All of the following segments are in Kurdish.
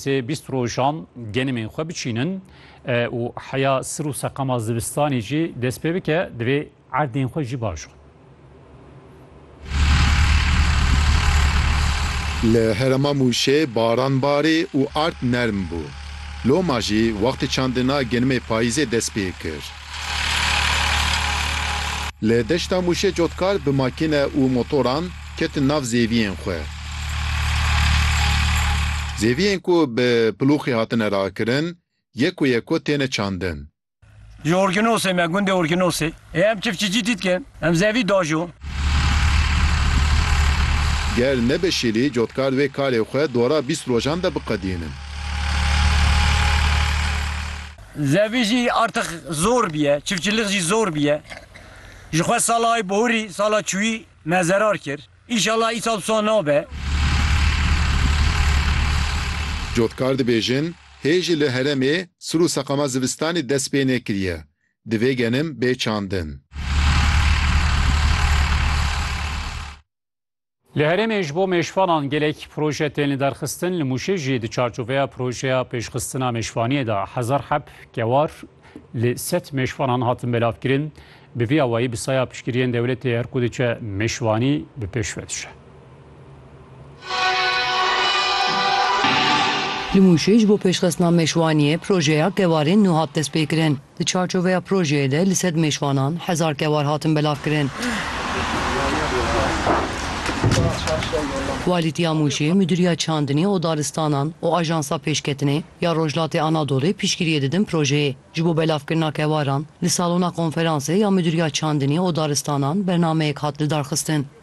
Sê bîst rojan genimên xwe biçînin û heya sir û seqama zivistanê jî dest pê bike divê erdên xwe jî baş xwin. Li herêma Mûşê baran barî û erd nerm bû. Loma jî wextê çandina genimê payîzê dest pê kir. Li deşta Mûşê cotkar bi makîne û motoran ketin nav zêviyên xwe. Zêviyên ku bi pilûxê hatine rakirin yeko yeko têne çandin. Ji Orkinosê me gundê Orkinosê ê em çifçicî dîtkin em zevî dajo. Ger nebe şîlî cotkar wê karê xwe dora bîst rojan de biqedînin. Zevî jî artix zor bîye, çifçilix jî zor bîye. Ji xwe salay borî, sala çûyî me zerar kir. Înşallah îsal wisa nabe. Cotkar dibêjin, Hê jî li heremê sir û seqama zivistanê dest pê nekiriye. Divê genim bê çandin. Li herêmê ji bo mêşvanan gelek proje tên lidarxistin, li Mûşê jî di çarçoveya projeya pêşxistina mêşvaniyê de hezar heb kewar li sed mêşvanan hatin belavkirin. Bi vî awayî bi saya piştgiriyên dewletê her ku diçe mêşvanî bi pêş ve diçe. Li Mûşê ji bo pêşxistina mêşwaniyê projeya kewarên nû hat destpêkirin. Di çarçoveya projeyê de li sed mêşvanan hezar kewar hatin belavkirin. Walîtiya Mûşê, Mudîriya Çandinê û Daristanan û Ajansa Pêşketinê ya Rojhilatê Anadolê piştgiriyê didin projeyê. Ji bo belavkirina kewaran, li salona konferansê ya Mudîriya Çandinê û Daristanan bernameyek hat lidarxistin.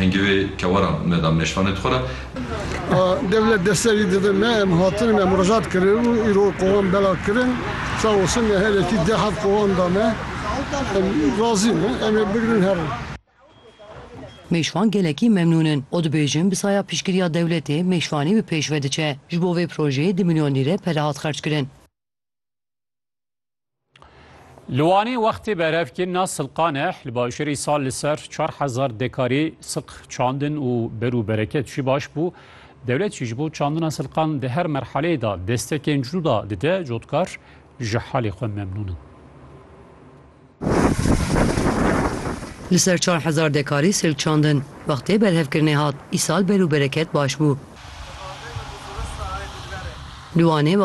Hingê wê kewaran me da meşvanê xwe re. A dewlet deserî dide me, em hatine me mirojat kirin û îro kowan belav kirin. Sağ olsun me herêkî deh hev kowan da me. Em razî ne, em ê bigirin herin. Mêşvan gelekî memnûn in û dibêjin bi saya piştgiriya dewletê mêşvanî bi pêş ve diçe. Ji bo vê projeyê du milyon lîre pere hat xerckirin. Li Wanê wextê berevkirina silqan e li bajarê sal li ser çar hezar dekarê silq çandin û ber û bereket jî baş bû. Dewlet jî ji bo çandina silqan di her merheleyê de destekên cû da dide cotkar ji halê xwe memnûn in. Li ser çar hezar dekarê silk çandin. Wextê berhevkirinê hat, îsal ber û bereket baş bû. Li Wanê